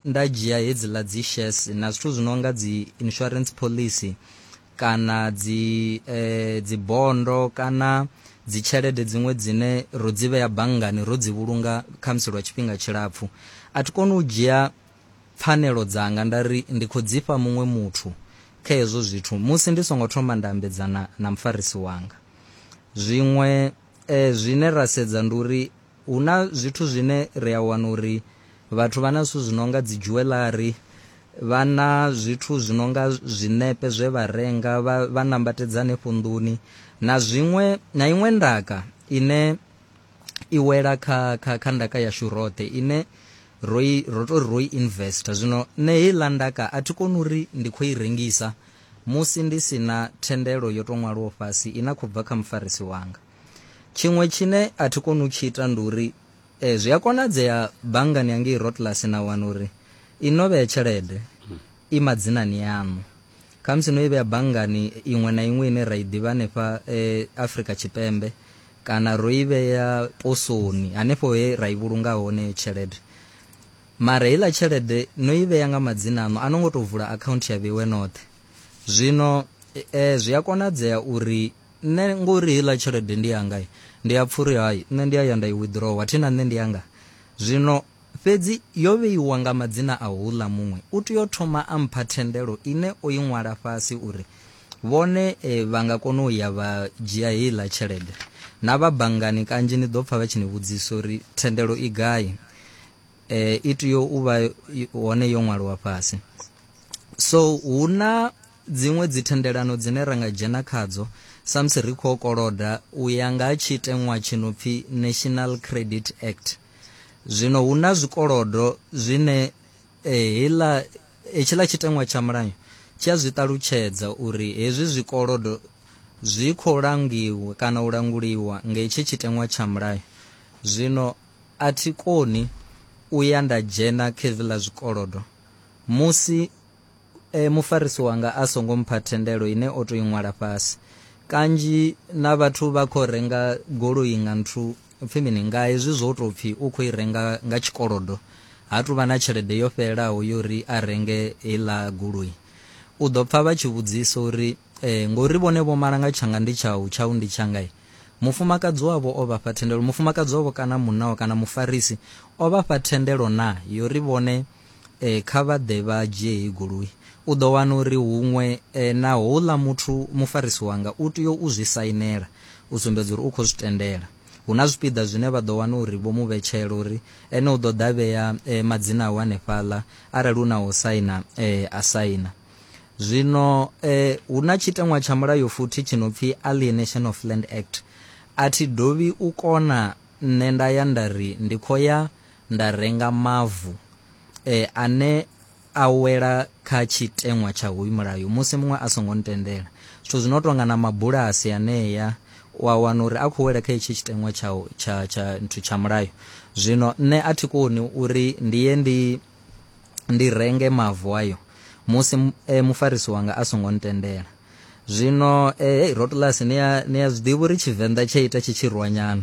nda dzhia hedziḽa dzi shares na zwithu zwi no nga dzi insurance policy kana dzi eh, dzi bondo kana dzi tshelede dziṅwe dzine ro dzi vhea banngani ro dzi vhulunga khamusi lwa tshifhinga tshilapfhu a thi koni u dzhia pfanelo dzanga nda ri ndi khou dzifha muṅwe muthu kha hezwo zwithu musi ndi songo thoma nda ambedzana na mufarisi wanga zwiṅwe eh, zwine ra sedza ndi uri Hu na zwithu zwine ri a wana uri vhathu vha na zwithu zwi no nga dzi dzhuweḽari, vha na zwithu zwi no nga zwiṋepe zwe vha renga vha, vha nambatedza hanefho nḓuni na zwiṅwe na iṅwe ndaka ine i wela kha, kha, kha ndaka yashu roṱhe ine ro i ro tou ri ro i investa. Zwino nṋe heiḽa ndaka a thi koni uri ndi khou i rengisa musi ndi si na thendelo yo tou ṅwalwaho fhasi ine a khou bva kha mufarisi wanga. tshiṅwe tshine a thi koni u tshi ita ndi uri eh, zwi a konadzea banngani yangei rotlasi na wana uri i no vhea tshelede i madzinani yaṋu khamusi no i vhea banngani iṅwe na iṅwe ine ra i ḓivha hanefha eh, afrika tshipembe kana ro i vhea posoni hanefho he ra i vhulunga hone heyo tshelede mara heiḽa tshelede no i vhea nga madzina aṋu a no ngo tou vula akhaunthu ya vheiwe noṱhe zwino e, zwi a konadzea uri nṋe ngori heiḽa tshelede ndi yanga ndi a pfha uri hai nṋe ndi a ya nda i withdrawa thi na nṋe ndi yanga zwino fhedzi yo vheiwa nga madzina a houḽa muṅwe u tea u thoma a mpha thendelo ine o i ṅwala fhasi uri vhone e, vha nga kona u ya vha dzhia heiḽa tshelede na vha banngani kanzhi ni ḓo pfha vha tshi ni vhudzisa uri thendelo i gai eh, i tea u vha hone yo ṅwaliwa fhasi so hu na dziṅwe dzithendelano dzine ra nga dzhena khadzo samusi ri khou koloda u ya nga ha tshiteṅwa tshi no pfi national credit act zwino hu na zwikolodo zwine eh, hela hetshiḽa tshiteṅwa tsha mulayo tshi a zwi ṱalutshedza uri hezwi zwikolodo zwi khou langiwa kana u languliwa nga hetshi tshiteṅwa tsha mulayo zwino A thi koni u ya nda dzhena khevi ḽa zwikolodo musi e mufarisi wanga a songo mpha thendelo ine o tou i ṅwala fhasi. Kanzhi na vhathu vha khou renga goloi nga nthu pfi mini, nga hezwi zwo tou pfi u khou i renga nga tshikolodo, ha tou vha na tshelede yo fhelelaho ya uri a renge heiḽa goloi. U ḓo pfa vha tshi vhudzisa uri. Ee, ngori vhone vho mala nga tshanga ndi tshau, tshau ndi tshanga-i. Mufumakadzi wavho o vha fha thendelo. Mufumakadzi wavho kana munna wavho kana Mufarisi o vha fha thendelo naa? Yo ri vhone kha vha ḓe vha dzhie heyi goloi. U ḓo wana uri huṅwe na houḽa muthu Mufarisi wanga u tea u zwi sainela u sumbedza uri u khou zwi tendela. Hu na zwipiḓa zwine vha ḓo wana uri vho mu vhetshela uri ene u ḓo ḓa a vhea madzina awe hanefhaḽa, arali hu na ha u saina a saina. zwino eh, hu na tshiteṅwa tsha mulayo futhi tshi no pfi alienation of land act a thi dovhi u kona nṋe nda ya nda ri ndi khou ya nda renga mavu eh, ane a wela kha tshiteṅwa tsha hoyu mulayo musi muṅwe a songo ntendela zwithu zwi no tonga na mabulasi aneya wa wana uri a khou wela kha hetshi tshiteṅwa tsha tsha tsha nthu tsha mulayo zwino nṋe a thi koni uri ndi ye ndi ndi renge mavu ayo musi e, mufarisi wanga a songo ntendela zwino eh, hey, rotlus ni a zwiḓivha uri tshivenḓa tshe ita tshi tshirwanyana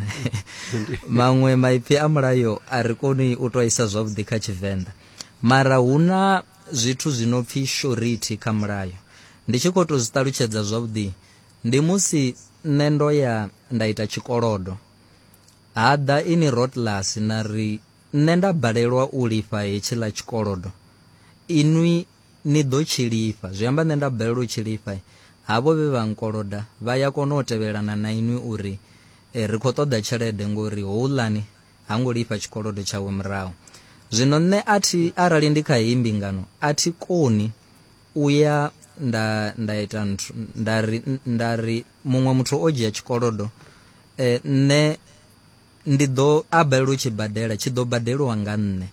maṅwe maipfi a mulayo a ri koni u to isa zwavhuḓi kha tshivenḓa mara hu na zwithu zwi no pfhi shority kha mulayo ndi tshi khou to zwi ṱalutshedza zwavhuḓi ndi musi nṋe ndo ya nda ita tshikolodo ha ḓa ini rotlus na ri Nṋe nda balelwa u lifha hetshiḽa tshikolodo, inwi ni ḓo tshi lifha. Zwi amba nṋe nda balelwa u tshi lifha, havho vhe vha nkoloda vha ya kona u tevhelana na inwi u ri, Ri khou ṱoḓa tshelede ngori houḽani ha ngo lifha tshikolodo tshawe murahu. Zwino nṋe a thi, arali ndi kha heyi mbingano, a thi koni u ya nda, nda ita nthu, nda ri, nda ri muṅwe muthu o dzhia tshikolodo, nṋe, Ndi ḓo a balelwa u tshi badela, tshi ḓo badeliwa nga nṋe,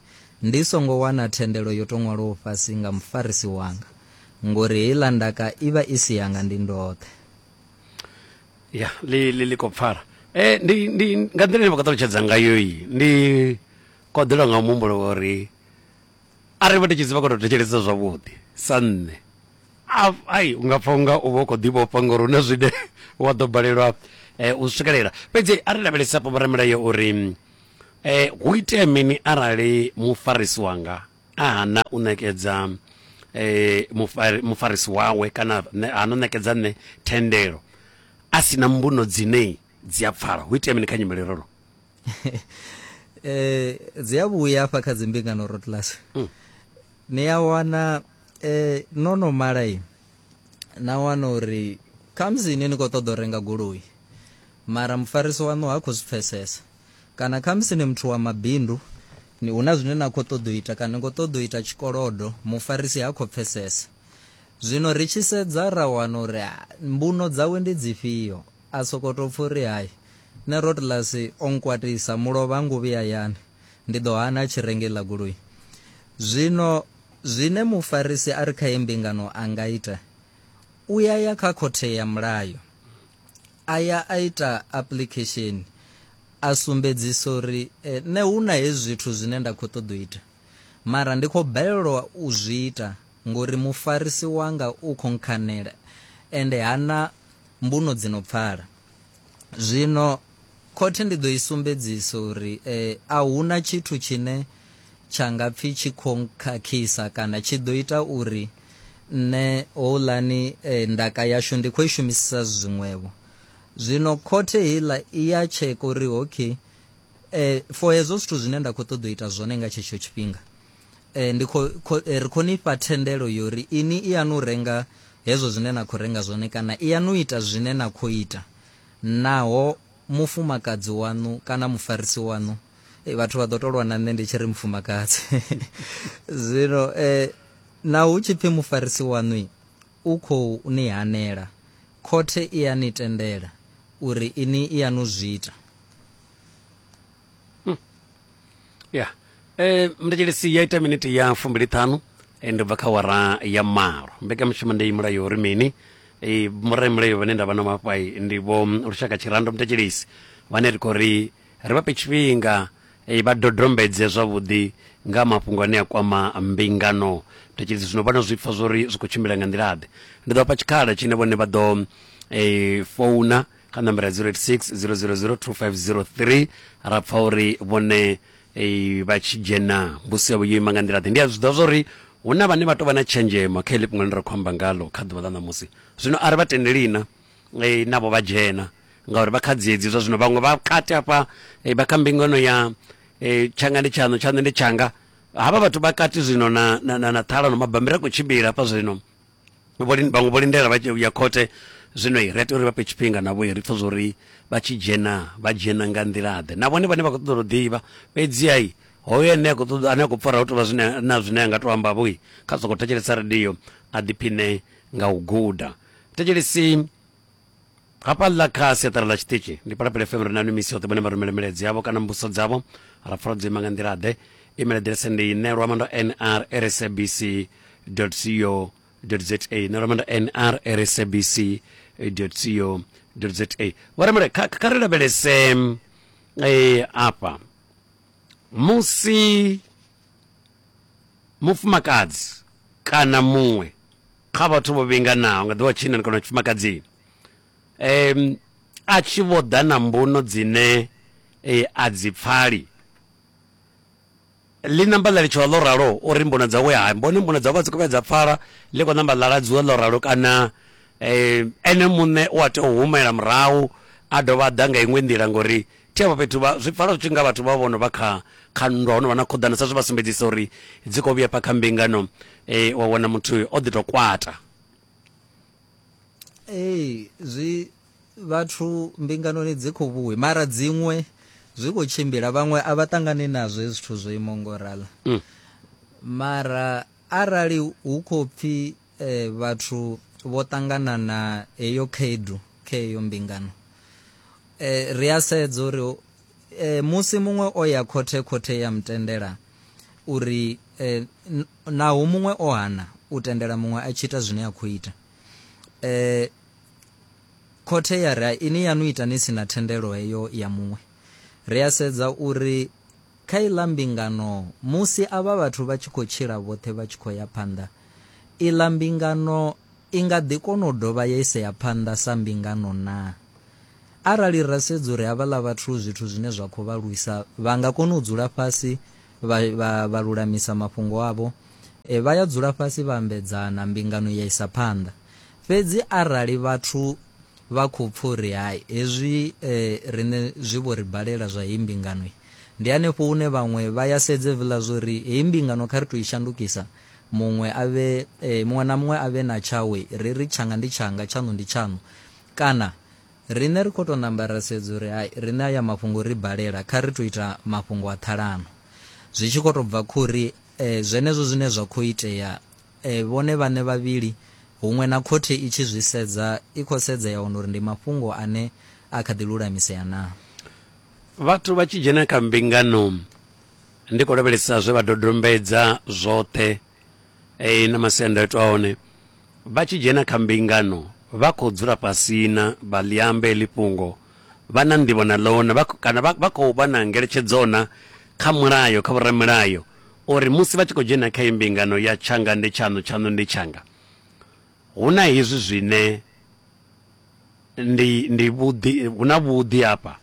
ndi songo wana thendelo yo tou ṅwalwaho fhasi nga mufarisi wanga, ngori heiḽa ndaka i vha i si yanga ndi ndoṱhe. Ya, ḽi, ḽi, ḽi khou pfala. E, ndi, ndi, nga nḓila ine vha khou ṱalutshedza ngayo iyi, ndi koḓelwa nga muhumbulo wa uri arali vha ndi tshi zivha kho to thetshelesa zwavhuḓi sa nṋe ai unga pfa unga u vha u khou ḓivhofha ngori hu na zwine wa ḓo balelwa eh, u swikelela fhedzi a ri lavhelesa afho vhoramulayo uri eh, hu itea mini arali mufarisi wanga a hana u ṋekedza eh, mufari, mufarisi wawe kana hana u ṋekedza nṋe thendelo a si na mbuno dzine dzi a pfala hu itea mini kha nyimele rolo eh dzi a vhuya afha kha dzimbingano road class mm. ni a wana eh no no malai na wana uri khamusi ine ni khou ṱoḓa u renga goloi mara mufarisi waṋu ha khou zwi pfesesa kana khamusi ni muthu wa mabindu ni hu na zwine na khou ṱoḓa u ita kana ni khou ṱoḓa u ita tshikolodo mufarisi ha khou pfesesa zwino ri tshi sedza ra wana uri mbuno dzawe ndi dzifhio A sokou tou pfa uri, Hai, nṋe Rotlas o nkwatisa, mulovha ha ngo vhuya a ya ani, ndi ḓo hana a tshi renga iḽa goloi. Zwino zwine mufarisi a re kha heyi mbingano a nga ita, u ya ya kha khothe ya mulayo, a ya a ita apuḽikhesheni, a sumbedzisa uri, Nṋe hu na hezwi zwithu zwine nda khou ṱoḓa u ita, mara ndi khou balelwa u zwi ita ngori mufarisi wanga u khou nkhanela ende ha na mbuno dzi no pfala. Zwino khothe ndi ḓo i sumbedzisa uri a hu na tshithu tshine tsha nga pfi tshi khou nkhakhisa kana tshi ḓo ita uri nṋe houḽani ndaka yashu ndi khou i shumisisa zwiṅwevho. Zwino khothe heiḽa i ya tsheka uri okay for hezwo zwithu zwine nda khou ṱoḓa u ita zwone nga tshetsho tshifhinga, E, ndi kho, kho, e, ri khou ni fha thendelo yo ri ini i yanu renga hezwo zwine na khou renga zwone kana i yanu ita zwine na khou ita naho mufumakadzi waṋu kana mufarisi waṋu e, vhathu vha ḓo tolwa na nṋe ndi tshi ri mufumakadzi zwino e, na hu tshi pfi mufarisi waṋu u khou ni hanela khothe i ya ni tendela uri ini i yanu zwi ita ya eh mndetshedzi ya ita miniti ya fumbili ṱhanu eh, ndi bva kha wara ya malo mbekanyamushumo ndi mulayo uri mini eh murayi mulayo vhane ndavha na mafhai ndi vho mm, lushaka tshirando mndetshedzi vhane ri khou ri ri vha fhe tshifhinga eh, vha dodombedze zwavhuḓi nga mafhungo ane a kwama mbingano mndetshedzi zwino vhana zwipfa zwori zwi khou tshimbila nga nḓila ḓe ndi ḓo vha fha tshikhala tshine vhone vha ḓo eh founa kha nambara 0860002503 ra pfa uri vhone eh, vha tshi dzhena mbusi yavho yo ima nga nḓila ḓe ndi a zwi ḓivha zwauri hu na vhane vha tou vha na tshenzhemo kha iḽi fhungo ḽine ra khou amba ngalo kha ḓuvha ḽa ṋamusi zwino a ri vha tendeli na eh, navho vha dzhena ngauri vha kha dziedzi zwa zwino vhaṅwe vha kati hafha eh, vha kha mbingano ya eh, tshanga ndi tshaṋu tshaṋu ndi tshanga havha vhathu vha kati zwino na, na, na, na ṱhalano mabambiri a khou tshimbila hafha zwino vhaṅwe vho lindela vha ya khothe zwino ri a tea uri vha fhe tshifhinga navho ri pfha zwori vha tshi dzhena vha dzhena nga nḓilaḓe na vhone vhane vha khou ṱoḓa u ḓivha fhedzi ai hoyo ane a khou ṱoḓa ane a khou pfara hu tovha zwine na zwine a nga to amba vhoi kha sokou thetshelesa radio a ḓiphiṋe nga u guda thetshelesi hafha ḽa kha siaṱari ḽa tshiṱitshi ndi palapele fm ri na misi yoṱhe vhone vha rumele milaedza yavho kana mbuso dzavho ra pfala dzo ima nga nḓila ḓe email aḓirese ndi nelwa mando nr rsabc co za nelwa mando nr rsabc co za vha remele kha kha ri lavhelese eh, afha musi mufumakadzi kana muṅwe kha vhathu vho vhinganaho nga ḓuvha tshinnani kana tshifumakadzini um a tshi vho ḓa na mbuno dzine e, a dzi pfali ḽi namba ḽa litshiwa ḽo ralo uri mbuno dzawe ha mbone mbuno dzawe a dzi kovhe dza pfala ḽi khou namba ḽa ladziwa ḽo ralo kana um ene muṋe u a tea u humela murahu a dovha a ḓa nga iṅwe nḓila ngori Thi afho fhethu, vha, zwi pfala zwi tshi nga vhathu vha vho no vha kha, kha nndwa, ho no vha na khuḓano, sa zwe vha sumbedzisa uri dzi khou vhuya afha kha mbingano, e, wa wana muthu o ḓi tou kwata. Ee, zwi, vhathu mbinganoni dzi khou vhuya, mara dziṅwe zwi khou tshimbila, vhaṅwe a vha ṱangani nazwo hezwi zwithu zwo imaho nga u ralo. Mara arali hu khou pfi. e, vhathu vho ṱangana na heyo khaedu kha heyo mbingano e, ri a sedza uri e, musi muṅwe o ya khothe khothe ya mutendela uri e, naho muṅwe o hana u tendela muṅwe a tshi ita zwine a khou ita e, khothe ya ri ini yanu ita ni si na thendelo heyo ya muṅwe ri a sedza uri Kha iḽa mbingano, musi avha vhathu vha tshi khou tshila vhoṱhe vha tshi khou ya phanḓa, iḽa mbingano i nga ḓi kona u dovha ya isea phanḓa sa mbingano naa? Arali ra sedza uri havhaḽa vhathu zwithu zwine zwa khou vha lwisa vha nga kona u dzula fhasi vha, vha, vha lulamisa mafhungo avho, e, vha ya dzula fhasi vha ambedzana, mbingano ya isa phanḓa. Fhedzi arali vhathu vha khou pfa uri, Hai, hezwi e, riṋe zwi vho ri balela zwa heyi mbingano, Ndi hanefho hune vhaṅwe vha ya sedze vhla zwo ri heyi mbingano kha ri tou i shandukisa muṅwe a vhe, muṅwe na muṅwe a vhe na tshawe, ri ri tshanga ndi tshanga, tshaṋu ndi tshaṋu. Kana, Riṋe ri khou tou namba ra sedza uri hai, riṋe aya mafhungo o ri balela, kha ri tou ita mafhungo a ṱhalano. Zwi tshi khou tou bva kha uri zwenezwo zwine zwa khou itea vhone vhaṋe vhavhili, huṅwe na khothe i tshi zwi sedza, i khou sedza ya wana uri ndi mafhungo ane a kha ḓi lulamisea naa. Vhathu vha tshi dzhena kha mbingano ndi khou lavhelesa zwe vha dodombedza zwoṱhe e, na masiandaitwa a hone. Vha tshi dzhena kha mbingano vha khou dzula fhasina vha ḽiamba heḽi fhungo vha na nḓivho na ḽona kana vha khou vha na ngeletshedzo na kha mulayo kha vhoramilayo uri musi vha tshi khou dzhena kha imbingano ya tshanga ndi tshaṋu tshaṋu ndi tshanga hu na hezwi zwine Ndi, ndi vhuḓi, hu na vhuḓi hafha,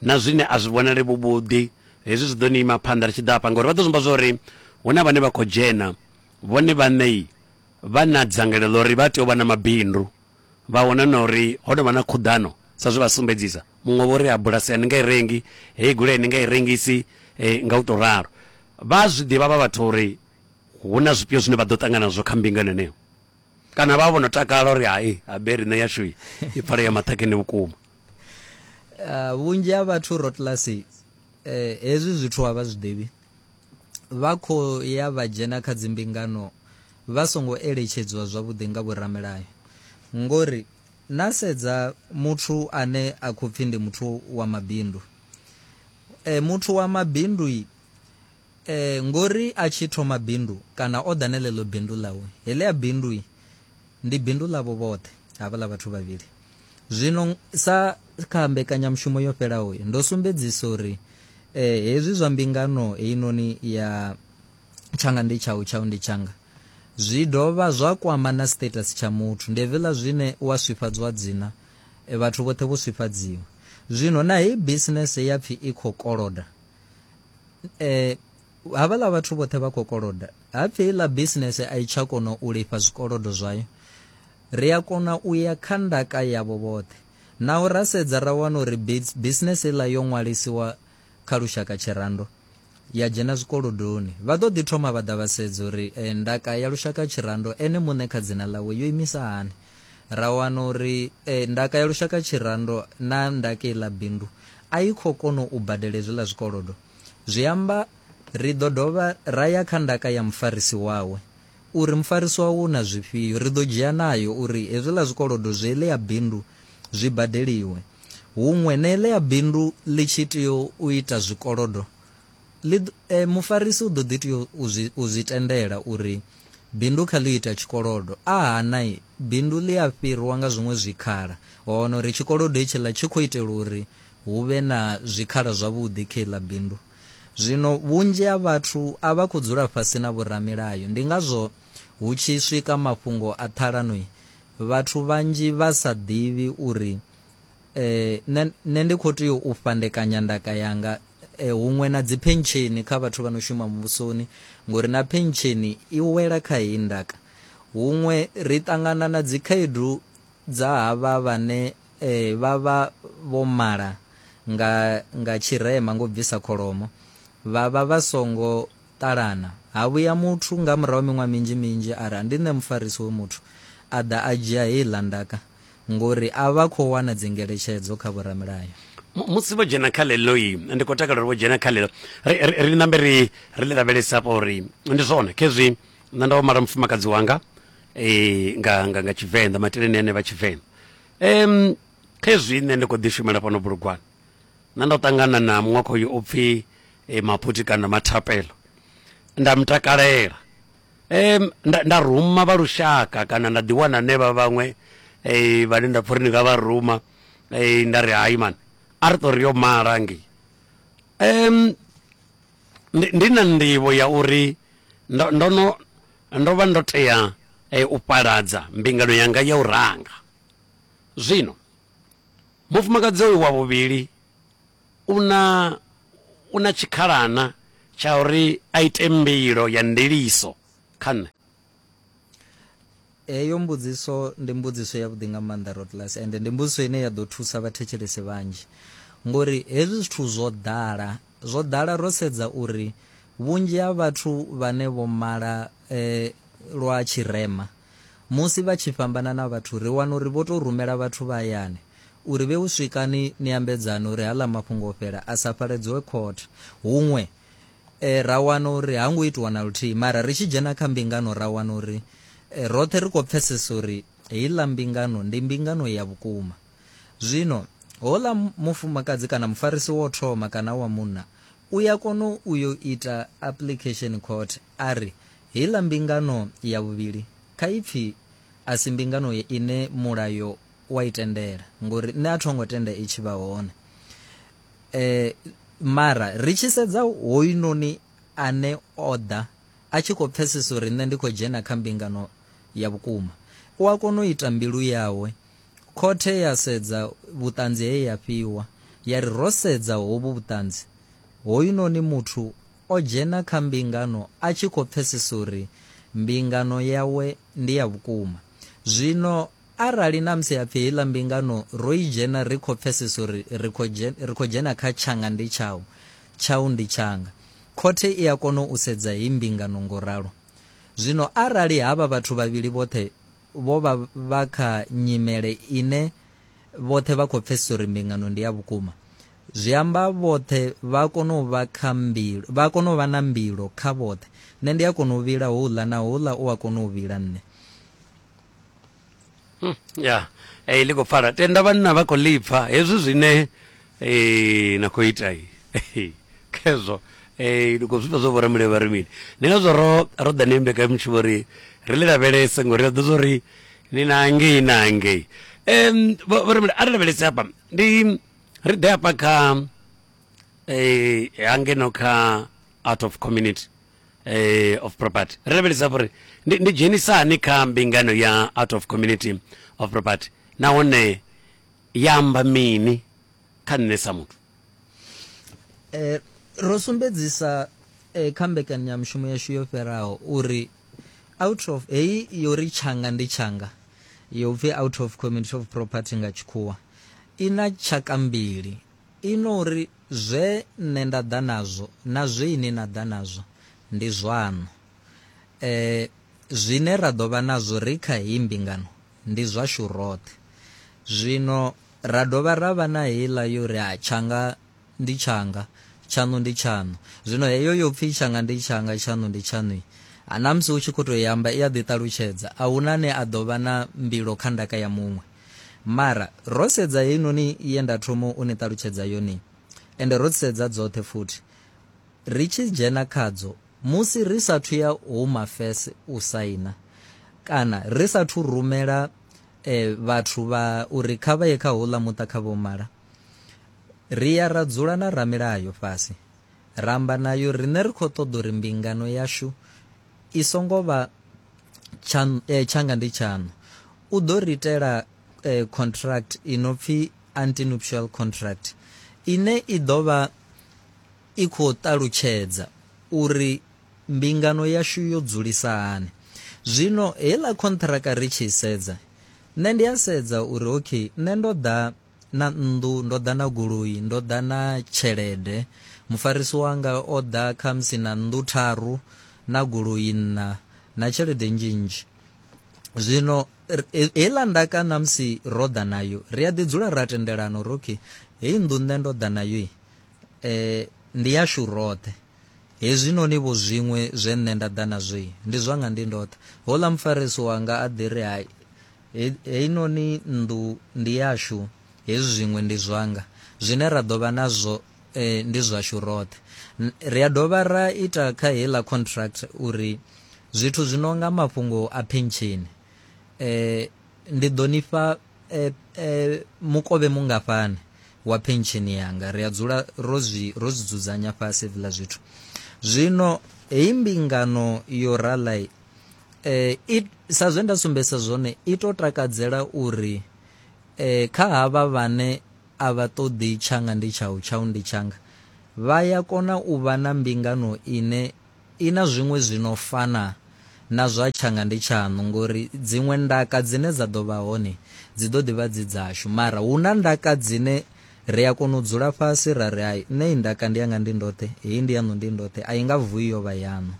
na zwine a zwi vhonale vhu vhuḓi. Hezwi zwi ḓo ni ima phanḓa ri tshi ḓa hafha, ngauri vha ḓo zwimba zwa uri hu na vhane vha khou dzhena vhone vhaṋei vha na dzangalelo ḽa uri vha tea u vha na mabindu, vha wana na uri ho no vha na khuḓano sa zwe vha sumbedzisa. Muṅwe vho ri, ha bulasi a ni nga i rengi, hei goloi a ni nga i rengisi, eh, nga u tou ralo. Vha a zwi ḓivha vha vhathu uri hu na zwifhio zwine vha ḓo ṱangana nazwo kha mbingano heneyo. kana vha vho no takala uri hai habe riṋe yashu i pfale ya maṱhakheni vhukuma ah, vhunzhi ha vhathu rotlasi eh, hezwi zwithu a vha zwi ḓivhi vha khou ya vha dzhena kha dzimbingano vha songo eletshedzwa zwavhuḓi nga vhoramelayo ngori na sedza muthu ane a khou pfhi ndi muthu wa mabindu e, muthu wa mabindu Ee, ngori a tshi thoma bindu kana o ḓa na ḽeḽo bindu ḽawe, heḽia bindu ndi bindu ḽavho vhoṱhe havhaḽa vhathu vhavhili. Zwino sa kha mbekanyamushumo yo fhelaho ndo sumbedzisa uri hezwi zwa mbingano heinoni ya tshanga ndi tshau tshau ndi tshanga zwi dovha zwa kwama na status tsha muthu ndi hevhiḽa zwine wa swifhadzwa dzina vhathu vhoṱhe vho swifhadziwa zwino na heyi business ya pfhi i khou koloda eh havhala vhathu vhoṱhe vha khou koloda hapfi iḽa business a i tsha kona u lifha zwikolodo zwayo ri a kona u ya kha ndaka yavho vhoṱhe naho ra sedza ra wana uri business iḽa yo ṅwalisiwa kha lushaka tshirando ya dzhena zwikolodoni vha ḓo ḓi thoma vha ḓa vha sedza uri eh, ndaka ya lushaka tshirando ene muṋe kha dzina ḽawe yo imisa hani ra wana uri e, ndaka ya lushaka tshirando na ndaka iḽa bindu a i khou kona u badela hezwiḽa zwikolodo zwi amba ri ḓo dovha ra ya kha ndaka ya mufarisi wawe uri mufarisi wawe u na zwifhio ri ḓo dzhia nayo uri hezwiḽa zwikolodo zwi ele ya bindu zwi badeliwe huṅwe na ele ya bindu ḽi tshi tea u ita zwikolodo Ḽi ḓo, e, mufarisi u ḓo ḓi tea u zwi, u zwi tendela uri bindu kha ḽi ita tshikolodo. A hana, i, bindu ḽi a fhirwa nga zwiṅwe zwikhala. Wa wana uri tshikolodo hetshiḽa tshi khou itela uri hu vhe na zwikhala zwavhuḓi kha iḽa bindu. Zwino vhunzhi ha vhathu a vha khou dzula fhasi na vhoramilayo. Ndi ngazwo hu tshi swika mafhungo a ṱhalano, i, vhathu vhanzhi vha sa ḓivhi uri Nṋe nṋe ndi kho tea u fhandekanya ndaka yanga huṅwe na dzi phentsheni kha vhathu vha no shuma muvhusoni ngori na phentsheni i wela kha heyi ndaka. Huṅwe ri ṱangana na dzi khaedu dza havha vhane vha vha vho mala nga nga tshirema ngo bvisa kholomo vha vha vha songo ṱalana ha vhuya muthu nga murahu ha miṅwaha minzhi minzhi ari ndi nṋe mufarisi hoyu muthu a ḓa a dzhia heiḽa ndaka ngori a vha khou wana dzingeletshedzo kha vhoramilayo. Musi vho dzhena kha ḽeḽoi, ndi khou takalela uri vho dzhena kha ḽeḽo, ri, ri, ri ṋambe ri, ri ḽi lavhelesa hafha uri ndi zwone khezwi nṋe ndo mala mufumakadzi wanga e, nga, nga, nga Tshivenḓa, maiteleni ane vha Tshivenḓa. Um, khezwi nṋe ndi khou ḓi shumela fhano bulugwane, nṋe ndo ṱangana na muṅwe khoyu o pfi e, Maphuthi kana Mathapelo, nda mu takalela. Nda ruma vha lushaka kana nda ḓi wana ne vha vhaṅwe vhane nda pfha uri ndi nga vha ruma nda ri hai mani a ri ṱori yo mala ngei ndi na nḓivho ya uri ndo ndo no ndo vha ndo tea u fhaladza mbingano yanga ya u ranga zwino mufumakadzi oyu wa vhuvhili u na, u na tshikhalana tsha uri a ite mbilo ya ndiliso kha nṋe? Heyo mbudziso ndi mbudziso yavhuḓi nga maanḓa Rodgers ende ndi mbudziso ine ya ḓo thusa vhathetshelesi vhanzhi ngori hezwi zwithu zwo ḓala, zwo ḓala ro sedza uri vhunzhi ha vhathu vhane vho mala lwa tshirema, Musi vha tshi fhambana na vhathu ri wana uri vho tou rumela vhathu vha hayani uri vhe u swikani ni ambedzane uri haḽa mafhungo o fhela a sa faledzoe khothe huṅwe e, ra wana uri ha ngo itiwa na luthihi mara ri tshi dzhena kha mbingano ra wana uri e, roṱhe ri khou pfesesa uri heiḽa mbingano ndi mbingano ya vhukuma zwino hola mufumakadzi kana mufarisi wo thoma kana wa munna u ya kona u yo ita application khothe a ri Heiḽa mbingano ya vhuvhili, kha ipfi a si mbingano ine Mulayo wa i tendela, ngori nṋe a tho ngo tenda i tshi vha hone. E, mara ri tshi sedza hoyunoni ane o ḓa a tshi khou pfesesa uri nṋe ndi khou dzhena kha mbingano ya vhukuma, u a kona u ita mbilu yawe. Khothe ya sedza vhuṱanzi he ya fhiwa, ya ri ro sedza hovhu vhuṱanzi, hoyunoni muthu o dzhena kha mbingano a tshi khou pfesesa uri mbingano yawe ndi ya vhukuma. Zwino arali ṋamusi ha pfi heiḽa mbingano ro i dzhena ri khou pfesesa uri ri khou ri khou dzhena kha tshanga ndi tshau, tshau ndi tshanga, khothe i a kona u sedza heyi mbingano ngo ralo. Zwino arali havha vhathu vhavhili vhoṱhe vho vha vha kha nyimele ine vhoṱhe vha khou pfesesa uri mbingano ndi ya vhukuma, zwi amba vhoṱhe vha a kona u vha kha mbilo vha a kona u vha na mbilo kha vhoṱhe nṋe ndi a kona u vhila houḽa na houḽa u a kona u vhila nṋe Hmm, ya eh, ḽi khou pfala tenda vhanna vha khou lipfa hezwi zwine eh, na khou ita i. khezwo eh, ndi khou zwifha zwo vhora mulevho vha ri mini ndi ngazwo ro ro ḓa ni mbekanyamushumo ri ri ḽi lavhelese ngori ri ḓo zwo ri ni na ngei na ngei um vho vho ri mule a ri lavhelese hafha ndi Ri ḓe hafha kha eh, hangeno kha out of community eh, of property ri lavhelesa uri ndi, ndi dzhenisa hani kha mbingano ya out of community of property nahone ya amba mini kha nṋe sa muthu Eh, ro sumbedzisa eh, kha mbekanyamushumo yashu yo fheraho uri Out of, heyi yo ri tshanga ndi tshanga yo pfi out of community of property nga tshikhuwa i na tshaka mbili, i no ri zwe nṋe nda ḓa nazwo na zwe ini na ḓa nazwo ndi zwaṋu. E, zwine ra ḓo vha nazwo ri kha heyi mbingano ndi zwashu roṱhe. Zwino ra dovha ra vha na heiḽa yo ri tshanga Ndi tshanga. Tshaṋu ndi tshaṋu. Zwino heyo yo pfi, Tshanga ndi tshanga, tshaṋu ndi tshaṋui, na musi u tshi khou tou i amba i a ḓiṱalutshedza. A hu na ane a ḓo vha na mbilo kha ndaka ya muṅwe. Mara, ro sedza heinoni ye nda thoma u ni ṱalutshedza yone, ende ro dzi sedza dzoṱhe futhi, ri tshi dzhena khadzo, musi ri sa athu ya Home Affairs u saina, kana ri sa athu rumela e, vhathu vha, uri kha vha ye kha houḽa muṱa kha vho mala, Ri ya ra dzula na ramilayo fhasi, ra amba nayo riṋe ri khou ṱoḓa uri mbingano yashu i songo vha tshaṋu, tshanga ndi tshaṋu. U ḓo ri itela contract i no pfi antenuptial contract ine i ḓo vha i khou ṱalutshedza uri mbingano yashu yo dzulisa hani. Zwino heiḽa khonṱhiraka ri tshi i sedza, nṋe ndi a sedza uri okay, nṋe ndo ḓa na nnḓu, ndo ḓa na goloi, ndo ḓa na tshelede. Mufarisi wanga o ḓa khamusi na nnḓu tharu, na goloi nṋa, na tshelede nnzhi nnzhi. Zwino heiḽa ndaka ṋamusi ro ḓa nayo, ri a ḓi dzula ra tendelana uri okay, heyi nnḓu nṋe ndo ḓa nayo eh, ndi yashu roṱhe hezwinoni vho zwiṅwe zwe nṋe nda ḓa nazwo ndi zwanga ndi ndoṱhe houḽa mufarisi wanga a ḓi ri hai Heinoni nnḓu ndi yashu, hezwi zwiṅwe ndi zwanga. Zwine ra ḓo vha nazwo ndi zwashu roṱhe. Ri a dovha ra ita kha heiḽa contract uri zwithu zwi no nga mafhungo a phensheni, ndi ḓo ni fha mukovhe mungafhani wa phensheni yanga. Ri a dzula ro zwi ro zwi dzudzanya fhasi hezwiḽa zwithu. Zwino heyi mbingano yo rala eh, it, sa zwe nda sumbesa zwone i to takadzela uri eh, kha havha vhane a vha ṱoḓi tshanga ndi tshau tshau ndi tshanga vha ya kona u vha na mbingano ine i na zwiṅwe zwi no fana na zwa tshanga ndi tshaṋu ngori dziṅwe ndaka dzine dza ḓo vha hone dzi ḓo ḓi vha dzi dzashu mara hu na ndaka dzine Ri a kona u dzula fhasi ra ri, Hai, nṋe i ndaka ndi yanga ndi ndoṱhe, heyi ndi yaṋu ndi ndoṱhe, a i nga vuwi yo vha yaṋu.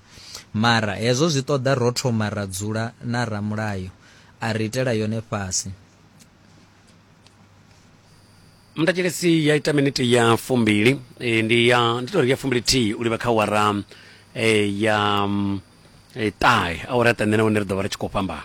Mara hezwo zwi ṱoḓa ro thoma ra dzula na ramulayo a ri itela yone fhasi. Muthetshelesi ya ita miniti ya fumbili e, ndi ya ndi tori ya fumbili thihi u livha kha awara e, ya mm, e, ṱahe awara ya ṱahe nṋe na hone ri ḓo vha ri tshi khou fhambana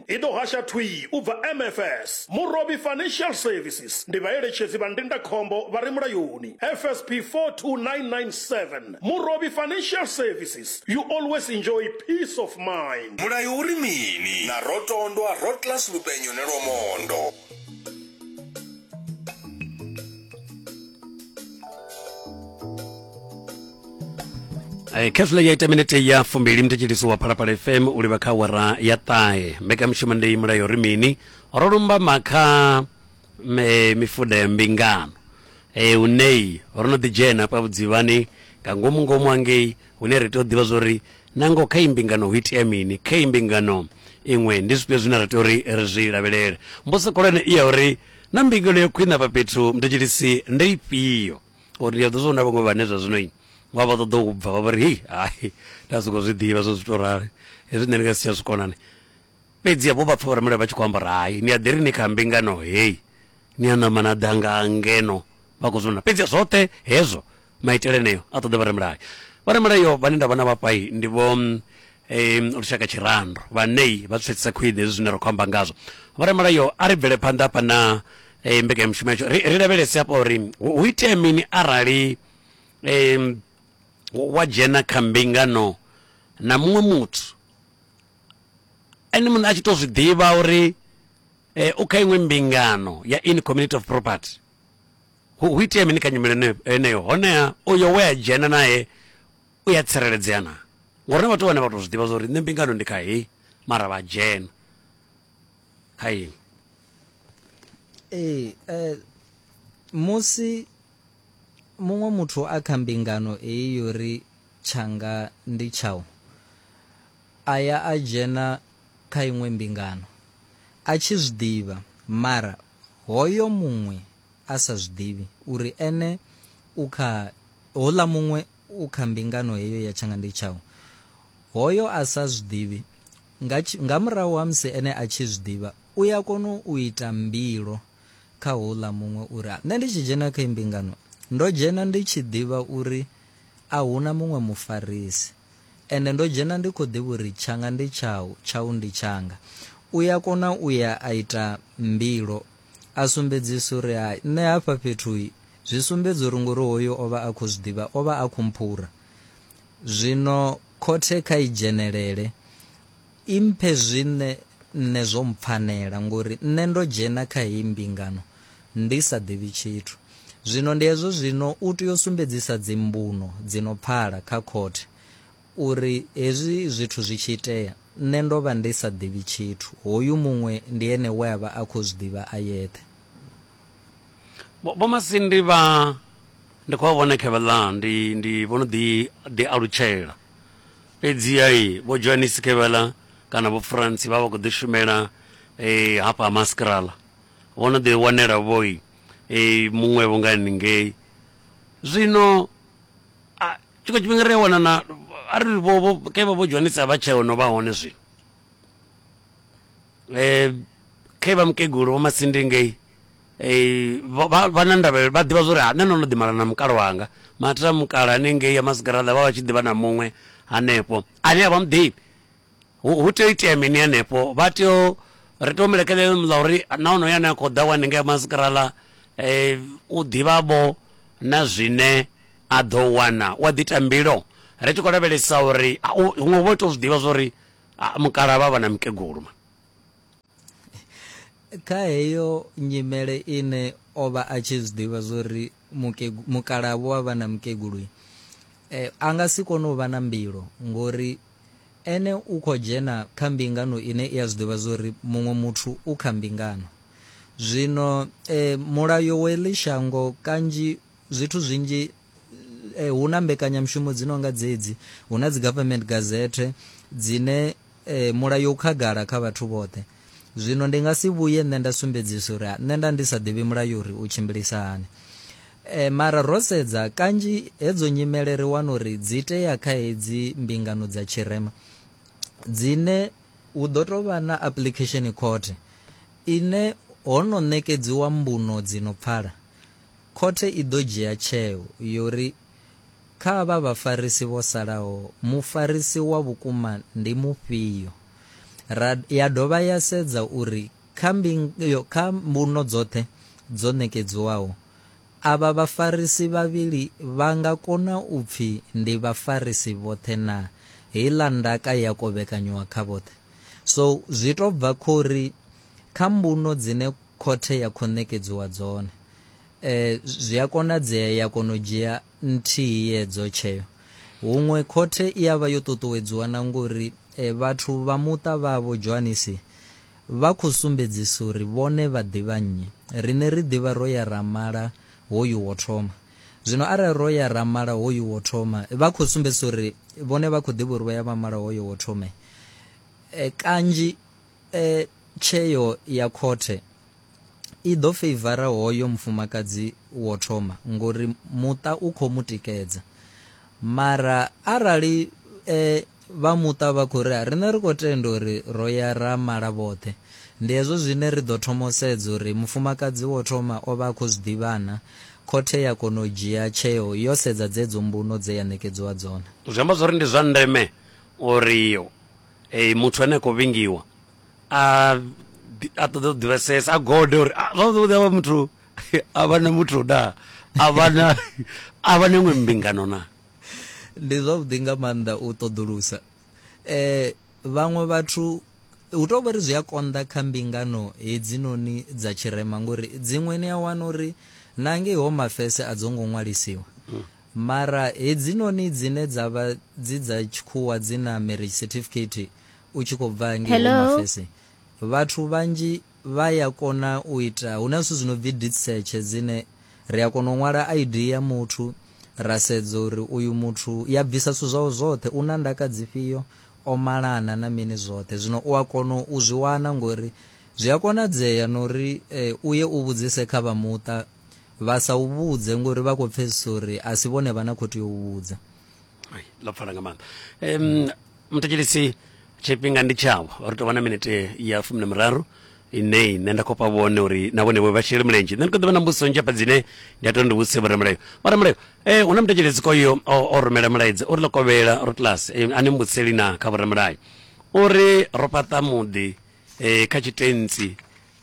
I ḓo hasha thwii u bva MFS, Murovhi Financial Services, ndi vhaeletshedzi vha ndindakhombo vha re mulayoni, FSP 42997, Murovhi Financial Services, you always enjoy peace of mind. Mulayo u ri mini? Na Rotondwa, Rotlas Lupenyone Lwomondo. Eh, khethula ya ita minete ya fumbili mthetshelisi wa phalaphala fm u livha kha wara ya ṱahe mbekamishumo ndei mulayo ri mini ro lumbama kha me- mifuda ya mbingano e unei ro no ḓidzhena pa vhudzivhani nga ngomu ngomu angei Hune ra tea u ḓivha zwa uri na ngoho kha iyi mbingano hu itea mini, kha iyi mbingano iṅwe ndi zwifhio zwine ra tea uri ri zwi lavhelele. Mbudziso khulwane i ya uri, Naa mbingano ya khwine afha fhethu muthetsheli-si ndi ifhio? Ngauri ndi a ḓivha zwa uri hu na vhaṅwe vhane zwa zwino vha vha ṱoḓa u bva vha vha ri, Hei, hai, nda sokou zwi ḓivha zwa uri zwi tou rali, hezwi nṋe ndi nga si tsha zwi kona ni. Fhedziha vho vha pfa vhoramulayo vha tshi khou amba uri, Hai, ni a ḓi ri ni kha mbingano hei, ni a ṋamba na ḓa nga ngeno. Vha khou zwi vhona, fhedziha zwoṱhe hezwo maitele eneo a ṱoḓa vharamulayo vharamulayo vhane nda vhona vhafhai ndi vho um, lushaka tshirando vhanei vha tswetsisa khwine hezwi zwine ra khou amba ngazwo vharamulayo a ri bvele phanḓa hafha na um, mbekanyamushumo yatsho ri, ri lavhelese hafha uri hu hu itea mini arali um, wa dzhena kha mbingano na muṅwe muthu ene muṋe a tshi to zwi ḓivha uri eh, u kha iṅwe mbingano ya in community of property Hu, hu itea mini kha nyimele ene- heneyo? Honeha uyo we a dzhena nae u ya tsireledzea na? Ngori na vhathu vhane vha tou zwi ḓivha zwa uri nṋe mbingano ndi kha heyi mara vha dzhena kha iṅwe ee eh, musi muṅwe muthu a kha mbingano eyi yo ri tshanga ndi tshau a ya a dzhena kha iṅwe mbingano a tshi zwi ḓivha mara hoyo muṅwe a sa zwi ḓivhi uri ene u kha houḽa muṅwe u kha mbingano heyo ya tshanga ndi tshau. Hoyo a sa zwi ḓivhi, nga, nga murahu ha musi ene a tshi zwi ḓivha, u ya kona u ita mbilo kha houḽa muṅwe uri, nṋe ndi tshi dzhena kha mbingano, ndo dzhena ndi tshi ḓivha uri a huna muṅwe mufarisi, ende ndo dzhena ndi khou ḓivha uri tshanga ndi tshau, tshau ndi tshanga. U ya kona u ya a ita mbilo A sumbedzisa uri, Hai, nṋe hafha fhethu zwi sumbedza uri ngori hoyu o vha a khou zwi ḓivha, o vha a khou mphura. Zwino khothe kha i dzhenelele, i mphe zwine nṋe zwo mpfanela ngori nṋe ndo dzhena kha heyi mbingano ndi sa ḓivhi tshithu. Zwino ndi hezwo zwino u tea u sumbedzisa dzimbuno dzi no pfala kha khothe Uri hezwi zwithu zwi tshi itea, nṋe ndo vha ndi sa ḓivhi tshithu, hoyu muṅwe ndi ene we a vha a khou zwi ḓivha a yeṱhe. Vho Massey ndi vha ndi khou vha vhona kha vhaḽa, ndi, ndi, vho no ḓi, ḓi alutshela. Fhedziha Vho Johannes kha vhaḽa, kana Vho Frantz, vha vha khou ḓi shumela hafha ha Maskrala. Vho no ḓi wanela-vho muṅwe-vho nga haningei. Zwino a tshiṅwe tshifhinga ri a wana na a ri vho kevha vho dzwanisa vha tsheo no vha hone zwino um eh, khe vha mukegulu vho masindi ngei eh, vha na ndavhelelo vha ḓivha zwori nṋe no no ḓimala na mukala wanga mathira mukala hanengei ya masigaraḓa vha vha tshi ḓivha na muṅwe hanefho ane a vha muḓivhi hu hu tea u itea mini hanefho vha tea u ri tea u mu lekelela muḽa uri na onoyo ane a khou ḓa wa ninga mazikarala um u ḓivha vho na zwine a ḓo wana u a ḓi ita mbilo ri tshi khou lavhelesa uri huṅwe u vha u tou zwi ḓivha zwa uri mukalaha vha vha na mukegulu. kha heyo nyimele ine o vha a tshi zwiḓivha zwori mukalabo wa vha na mukegulu eh, a nga si kone u vha na mbilo ngori ene u khou dzhena kha mbingano ine i a zwiḓivha zwori muṅwe muthu u kha mbingano zwino eh, mulayo wa eḽi shango kanzhi zwithu zwinzhi eh, hu na mbekanyamushumo dzi no nga dzedzi hu na dzi government gazette dzine Ee, Mulayo u khagala kha vhathu vhoṱhe. Zwino ndi nga si vhuye nṋe nda sumbedzisa uri a, nṋe nda ndi sa ḓivhi Mulayo uri u tshimbilisa hani. E, mara ro sedza, kanzhi hedzo nyimele ri wana uri dzi itea kha hedzi mbingano dza tshirema, dzine hu ḓo tou vha na application khothe ine ho no ṋekedziwa mbuno dzi no pfala. Khothe i ḓo dzhia tsheo yo ri Kha avha vhafarisi vho salaho, mufarisi wa vhukuma ndi mufhio? Ra ya dovha ya sedza uri kha mbingo, kha mbuno dzoṱhe dzo ṋekedziwaho, avha vhafarisi vhavhili vha nga kona u pfi ndi vhafarisi vhoṱhe naa? Heiḽa ndaka ya kovhekanywa kha vhoṱhe. So, zwi tou bva khori kha mbuno dzine khothe ya khou ṋekedziwa dzone, E, zwi a konadzea ya kona u dzhia nthihi yedzo tsheo. Huṅwe khothe i a vha yo ṱuṱuwedziwa na ngori e, vhathu vha muṱa vhavho Johanisi vha khou sumbedzisa uri vhone vha ḓivha nnyi. Riṋe ri ḓivha ro ya ra mala hoyu wo thoma. Zwino arali ro ya ra mala hoyu wo thoma, vha khou sumbedzisa uri vhone vha khou ḓivha uri vho ya vha mala hoyo wo thoma. E, kanzhi e, tsheo ya khothe i ḓo feivara hoyo mufumakadzi wo thoma ngori muṱa u khou mu tikedza mara arali e, vha muṱa vha khou ri riṋe ri khou tenda uri ro ya ra mala vhoṱhe ndi hezwo zwine ri ḓo thoma u sedza uri mufumakadzi wo thoma o vha a khou zwi ḓivhana khothe ya kona u dzhia tsheo yo sedza dzedzo mbuno dze ya ṋekedziwa dzone zwi amba zwori ndi zwa ndeme uri e, muthu ane a khou vhingiwa a a ṱoḓa u ḓivhesesa a gode uri ah, vha ṱoḓa vha muthu a vha na muthu na a vha na a vha na iṅwe mbingano na ndi zwavhuḓi nga maanḓa u ṱoḓulusa eh vhaṅwe vhathu hu tou vha ri zwi a konḓa kha mbingano hedzinoni dza tshirema ngori dziṅwe ni a wana uri na ngei ho mafese a dzo ngo ṅwalisiwa mm. mara hedzinoni dzine dza vha dzi dza tshikhuwa dzi na marriage certificate u tshi khou bva ngei Hello? Home Affairs vhathu vhanzhi vha ya kona u ita hu na zwithu zwi no bvi deed search dzine ri a kona u ṅwala ID ya muthu ra sedza uri uyu muthu ya bvisa zwithu zwawe zwoṱhe u na ndaka dzifhio o malana na mini zwoṱhe zwino u a kona u zwi wana ngori zwi a konadzea na uri eh, u ye u vhudzise kha vha muṱa vha sa u vhudze ngori vha khou pfesesa uri a si vhone vha na khou tea u vhudza Ai, ḽo pfala nga maanḓa um muthetshelisi tshifhinga ndi tshavho ri tou vha na minete ya fumi na miraru ine nṋe nda khou fha vhone uri na vhone vho vha shele mulenzhe nṋe ndi khou ḓivha na mbudziso nzhi hafha dzine ndi a tou ndi vhudzise vhoramulayo vhoramulayo eh hu na muthetshelesi koyo o o rumela mulaedza uri ḽo kovhela ro class eh, a ni mbudziseli na kha vhoramulayo uri ro fhaṱa muḓi eh kha tshitentsi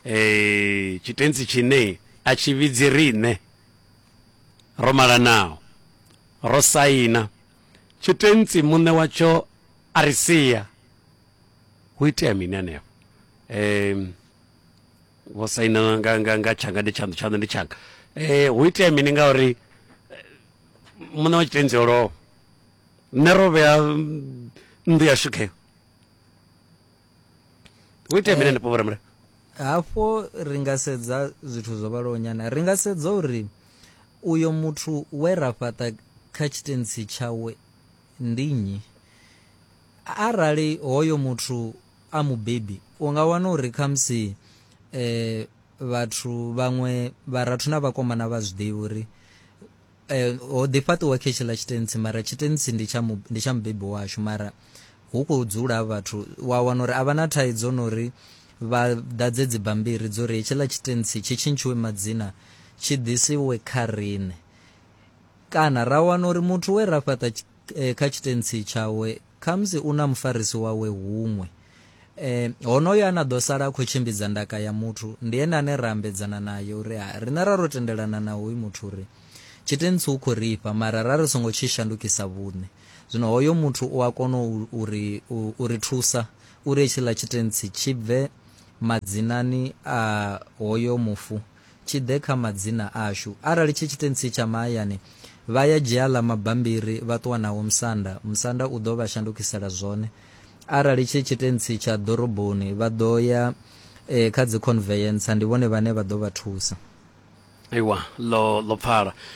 eh tshitentsi tshine a tshi vhidzi riṋe ro malanaho Ro saina tshitentsi muṋe watsho a ri sia. Ho itea mini hanefho? Um vho saina nga nga nga tshanga ndi tshaṋu tshaṋu ndi tshanga. Eh ho itea mini ngauri muṋe wa tshitentsi o lovha. Nṋe ro vhea nnḓu yashu kheyo. hu ite mine nepo vhoramulayo hafho ri nga sedza zwithu zwo vhalaho nyana ri nga sedza uri uyo muthu we ra fhaṱa kha tshitensi tshawe ndi nnyi arali hoyo muthu a mubebi u nga wana uri khamusi um vhathu vhaṅwe vharathu na vhakomana vha zwi ḓivhi uri Eh, ho ḓi fhaṱiwa khe tshiḽa tshitensi mara tshitensi ndi tsha mu- ndi tsha mubebi washu mara hu khou dzula vhathu wa wana uri a vha na thaidzo na uri vha ḓadze dzibammbiri dzo ri hetshiḽa tshitensi tshi tshintshiwe madzina tshi ḓisiwe kha riṋe kana ra wana uri muthu we ra fhaṱa tshi- eh, kha tshitensi tshawe Khamusi u na mufarisi wawe huṅwe. E, honoyo ane a ḓo sala a khou tshimbidza ndaka ya muthu ndi ene ane ra ambedzana naye uri ha riṋe ra ro tendelana na hoyu muthu uri tshitentsi u khou ri fha mara ra ri songo tshi shandukisa vhuṋe. Zwino hoyo muthu u a kona u, u, ri, u, u ri thusa uri hetshiḽa tshitentsi tshi bve madzinani a hoyo mufu. tshi ḓe kha madzina ashu. Arali tshi tshitentsi tsha mahayani, vha ya dzhia aḽa mabambiri vha ṱuwa nao musanda, musanda u ḓo vha shandukisela zwone. Arali tshi tshitentsi tsha ḓoroboni, vha ḓo ya eh, kha dzikhonveyentsa, ndi vhone vhane vha ḓo vha thusa. Aiwa, ḽo ḽo pfala.